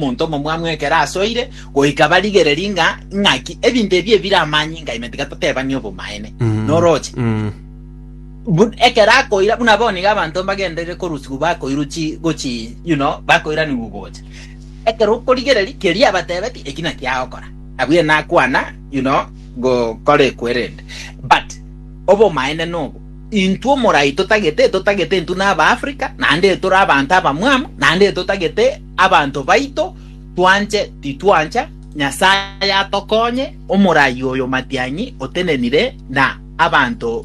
Omonto omomwanu ekero asoire goika barigererie ng'a ing'aki ebinto ebi ebire amanyinga ime tiga totebanie obomaene. Mm. Noroche. Mm. Bu- ekero akoira buna bono iga abanto mbagenderire korusigwa bakoirwa chi gochi you know bakoiranigwa gocha ekero okorigereria keria abatebeti eki naki agokora abwo ere nakwana you know gokora ekwerende but obomaene nobo intwe omorai totagete totagete intwe naba africa naende tore abanto abamwamu naende totagete Abanto baito twanche titwancha, Nyasae atokonye, omoraai oyo matiang'i otenenire na abanto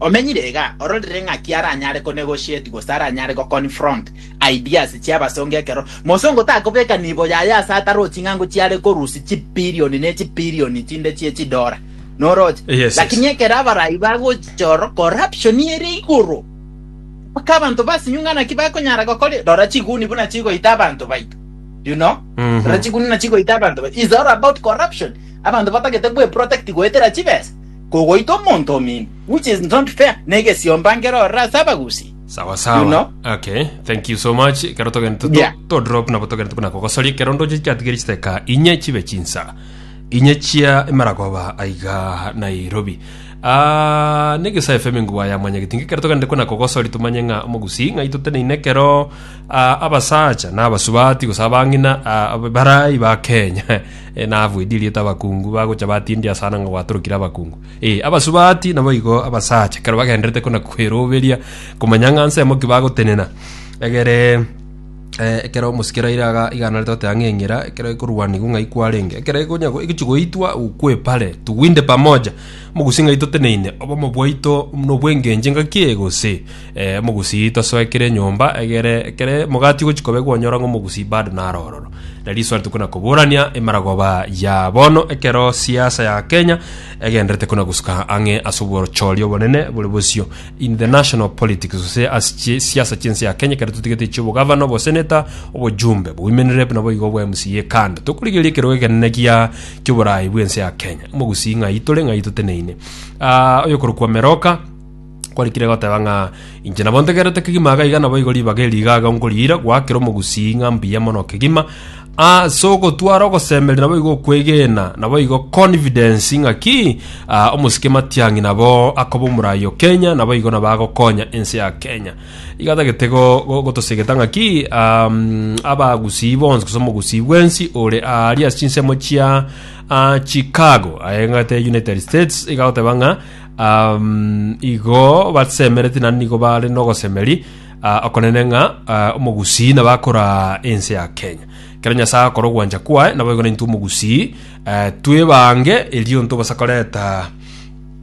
omenyire iga ororire ng'aki aranyare ko negotiate gose aranyare go confront ideas chiabasonge ekero mosongo takobeka nibo yaye ase ataro ching'ango chiare korusia chibilioni ne chibilioni chinde chie chidora noroche Yes, yes. lakini ekero abaraai bagocha oro corruption ere igoro Mpaka abanto basinyu ng'a naki bakonyara gokora igo. Rora chiguni buna chigoita abanto baito. You know? Mhm. Rora chiguni buna chigoita abanto baito. It's all about corruption. Abanto batagete gweprotect goetera chibesa. Kogoita omonto omino. Which is not fair. Negesiomba nkero ororo ase abagusi. sawa You sawa know? okay thank you so much ekero togende to- Yeah. to drop nabo togende buna kogosoria ekero ndoche chiatigere chiteka inye chibe chinsa inye chia emaragoba aiga nairobi Aa, nege sa FM ngwa ya mwanyagetinga ekero toganete kona kogosori tomanye ng'a omogusi ng'ai toteneine ekero ah, abasacha na abasubati gose abang'ina ah, ab- barai ba Kenya Eh, nabuedi rieta abakungu bagocha batindi asana ng'a gwatorokire abakungu eh, abasubati nabo igo abasacha ekero bagenderete kona kweroberia komanya ng'a nsemo ki bagotenena egere Eh, ekero omosikera ire aga igana ritote ang'e eng'era ekero ekorwanigwa ng'ai kwarenge ekero egonya egochi goitwa ukwepare tuwinde pamoja Mogusii ng'ai toteneine obomo bwaito nobw'engencho engaki eye gose? Eh, mogusii tosoe kera enyomba egere ekero emogati egochia koba egonyora ng'a omogusii bado naro ororo. Na risoari tokona koborania emaragoba ya bono ekero siasa ya Kenya egenderete kona gosuka ang'e ase obochori obonene bore bosio in the national politics gose ase chie- siasa chi'ense ya Kenya ekero totigete chi'obogavana, oboseneta, obojumbe, obowomenrep naboigo obwa MCA kando. Tokorigereria ekerogo ekenene gia kioborai bwense ya Kenya. Omogusii ng'ai tore ng'ai toteneine. Ah, oyokorokwa Meroka kwarikire goteba ng'a inche nabo ntegerete kegima iga iga nabo igo ribaga eri iga iga nkoriira gwakera omogusii ng'a mbuya mono kegima ase ogotwara ogosemeria nabo igo okwegena nabo igo confidence ng'a ki ah, omosike matiang'i nabo akoba omorayi o Kenya nabo igo nabo agokonya ense ya Kenya Igatagete go- gotosegeta ng'aki am, abagusii bonsi gose omogusii bwensi ore aaria ase chinsemo chia ah, Chicago aye eng'ete ya United States igagoteba ng'a am, igo basemereti naende nigo bare nogosemeri ah, okonene ng'a ah, omogusii nabo akoraa ense ya Kenya ekero Nyasae agokora ogwancha kwaye naboigo naintwe omogusii eh, twebange erio ntobasa koreta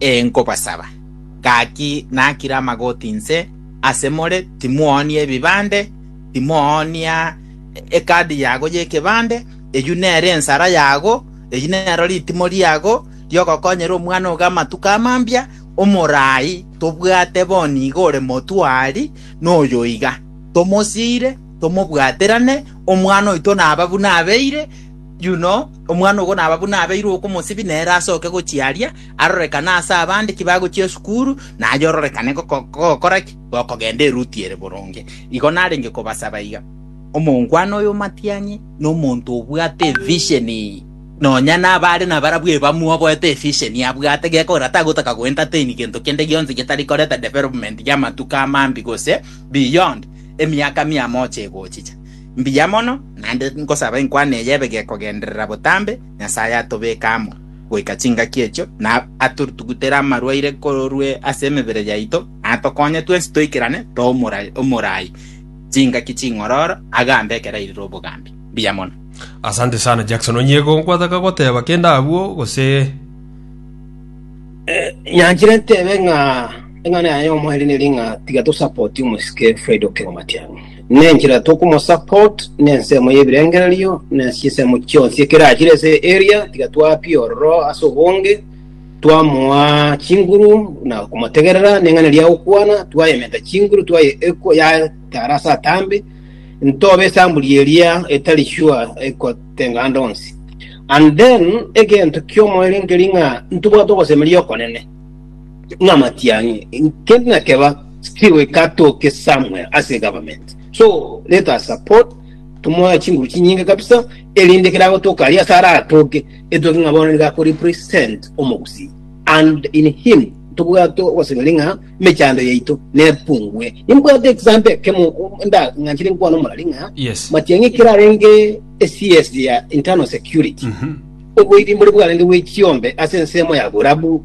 Ee, nkobasaba, gaki nakire amagoti inse ase more, timoonia ebibande, timoonia ekadi yago y'ekebande, eyio nere ensara yago, eyio nero ritimo riago ri'ogokonyera omwana ogo amatuko a mambia, omorai tobwate boni iga ore motwari noyo iga, tomosiire, tomobwaterane, omwana oito naba buna abeire, Yuno, omwana ogo naba buna abeirwe okomosibia nere asoke gochia aria, arorekane ase abande ki bagochia esukuru, naye ororekane gokora ki? Gokogenda eruti ere boronge. Igo narenge kobasaba iga, Omongwana oyo omatianyi nomonto obwate evisheni nonya nabare nabarabwo ebamu oboete efisheni abwate, gekogera tagotaka go entertain gento kende gionsi getari koreta development y'amatuko amambi gose beyond emiaka mia mocha egochicha. Mbuya mono, naende nkosaba enkwana eye ebe gekogenderera botambe, Nyasae atobeke amo goika chingaki echio, na atotugutere amarwaire korwa ase emebere yaito, na atokonye twensi toikerane too omorai chingaki ching'ororo, agambe ekero airire obogambi. Mbuya mono. Asante sana Jackson onye gonkwataka goteba kende abwo gose Nyanchire ntebe ng'a eng'ana yaye y'omoerio neri ng'a tiga tosapotie omosike Fred Okello Matiang'i. Nenchera tokomosupport nensemo y'ebirengererio na chinsemo chionsi ekerachire ase eria tiga twapie ororo ase obonge, twamoa chinguru na komotegerera neng'ana eria agokwana, twayementa chinguru twaye eko yatara ase atambe, ntobe esamburi eria etari sure ekotenga ande onsi. And then egento ki'omoerio nkeri ng'a ntobwate ogosemeria okonene. namatiang'e kende nakeba still katoke somewhere ase government so let us support tumoe chinguru chinyinge kabisa erinde kere agotoka aria ase aratoke etoke ng'a bono niga ako represent omogusii and in him tobwate ogosegeri ng'a mechando yaito nepungue nimbwate example ekemo nda ng'anchire nkwana omorari ng'a Yes. matiang'e kere arenge cs ya internal security Mhm. oboiri mbore bwarenge bwe chiombe ase ensemo ya borabu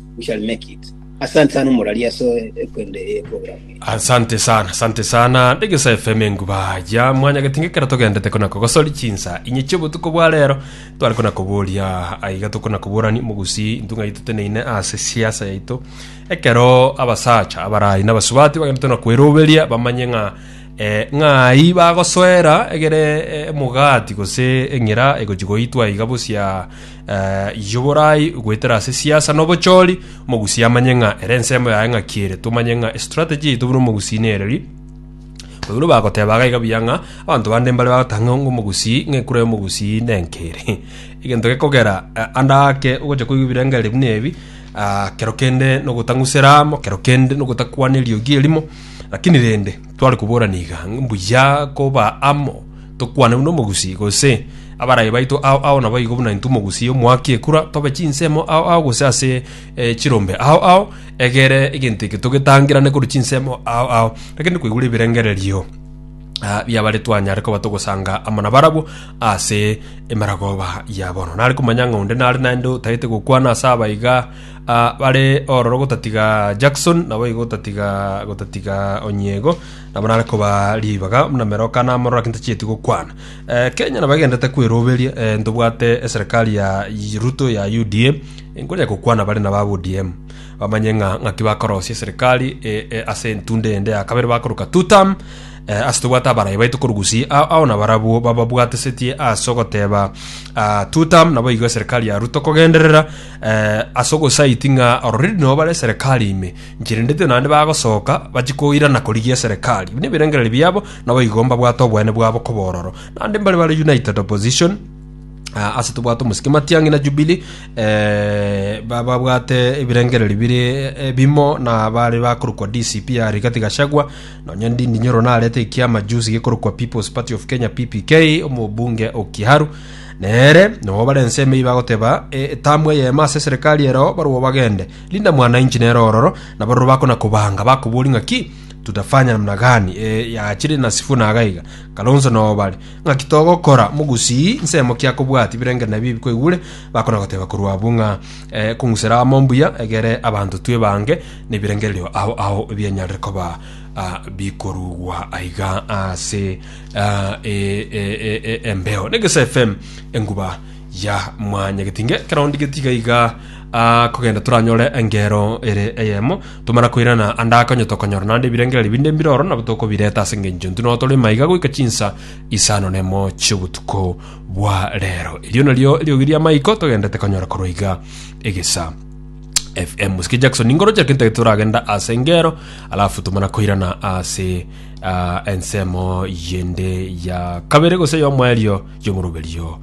we shall make it. Asante sana omorari ase ekwende eye program eye. asante sana asante sana ndegesa fm enguba ya mwanya getinge kera togendete kona kogosori chinsa inye chiobotuko bwa rero tware kona koboria aiga tokona koborani mogusi intunga yaito teneine ase siasa yaito ekero abasacha abarayi nabasubati bagende tona kweroberia bamanye ng'a eh, ng'ai bagosoera egere eh, omogati gose eng'ira egochi goitwa iga bosia Yoborai goetera ase siasa na obochori, omogusi amanye ng'a ere ensemo yaye ng'aki ere. Tomanye ng'a estrategy yaito buna omogusi nereri. Baibuli bagoteba iga iga buya ng'a abanto bande mbare bagotaka ng'a omogusi ng'a ekura y'omogusi nenka ere. Egento gekogera ande ake ogocha koigwa ebirengereri buna ebi kero kende nogotang'usera amo, kero kende nogotakwana eriogi erimo, lakini rende tware koborana iga mbuya koba amo Tokwane buna omogusii, gose abarai baito ao ao naboigo buna intwe omogusii omoaki ekura, tobe chinsemo ao ao gose ase chirombe ao ao, egere egento eke togetangerane korwa chinsemo ao ao. Rakende koigure ebirengererio biabare twanyare koba togosanga amo nabarabwo ase emeragoba ya bono. Nare komanya ng'a onde nare naende otagete gokwana ase aba iga bare ororo gotatiga Jackson, naboigo gotatiga gotatiga Onyiego, Nabo nare koba ribaga buna meroka na mororo ake ntachieti gokwana. Eh, Kenya nabo egendete kweroberia, eh, ntobwate eserekari ya Ruto ya UDA, nkonya gokwana bare naba ODM. Bamanye ng'a ng'aki bakorosia eserekari eh, eh, ase entundo ende ya kabere bakoroka two term, eh, ase tobwate abarayi baito korwa Gusii, ao ao nabarabwo bababwatesetie ase ogoteba ah, two term, naboigo eserekari ya Ruto kogenderera eh, ase ogosaiti ng'a already nabo bare eserekari ime Nchirendetwe naende bagosoka, bachie koirana korigia eserekari, buna ebirengererio biabo, naboigo mbabwate obweene bwabo koba ororo. Naende mbare bare united opposition, ah, ase tobwate omosike matiang'i na Jubilee, eh, ba- babwate ebirengererio bire eh, bimo na bare bakorokwa DCP ya Rigathi Gachagua, nonya Ndindi Nyoro narete ekiama juzi gekorokwa People's Party of Kenya PPK, omobunge o Kiharu, nere nabo bare ensemo eyio bagoteba eh, etamu eyemo ase eserekari ero barwo bagende Linda mwana inche nere ororo, na baroro bako nakobanga, bakoboria ng'aki, Tutafanya namna gani? Ee, yaachire na Sifuna iga iga, Kalonzo nao bare. Ng'aki togokora, mogusii? Nsemo ki akobwati? Ebirengerero nabio bikoigure, bakona goteba korwa abwo ng'a, Ee, kong'usera amo mbuya, egere abanto twe bange, na ebirengererio ao ao bianyarire koba ah, bikorugwa aiga ase ah, e- e- e- e- embeo. Negesa FM, enguba ya mwanya getinge ekero ndigeti iga iga ah, kogenda toranyore engero ere eyemo tomara koirana ande akonyo tokonyora naende ebirengererio binde mbiroro nabo tokobireta ase engencho intwe nao tore maiga goika chinsa isano nemo chiobotuko bwa rero erio nario eriogi ria maiko togendete konyora korwa iga egesa fm musiki jackson ingorochera kintege turagenda ase ngero alafu tumana koirana ase uh, ensemo yende ya kabere gose yomoerio yomoruberio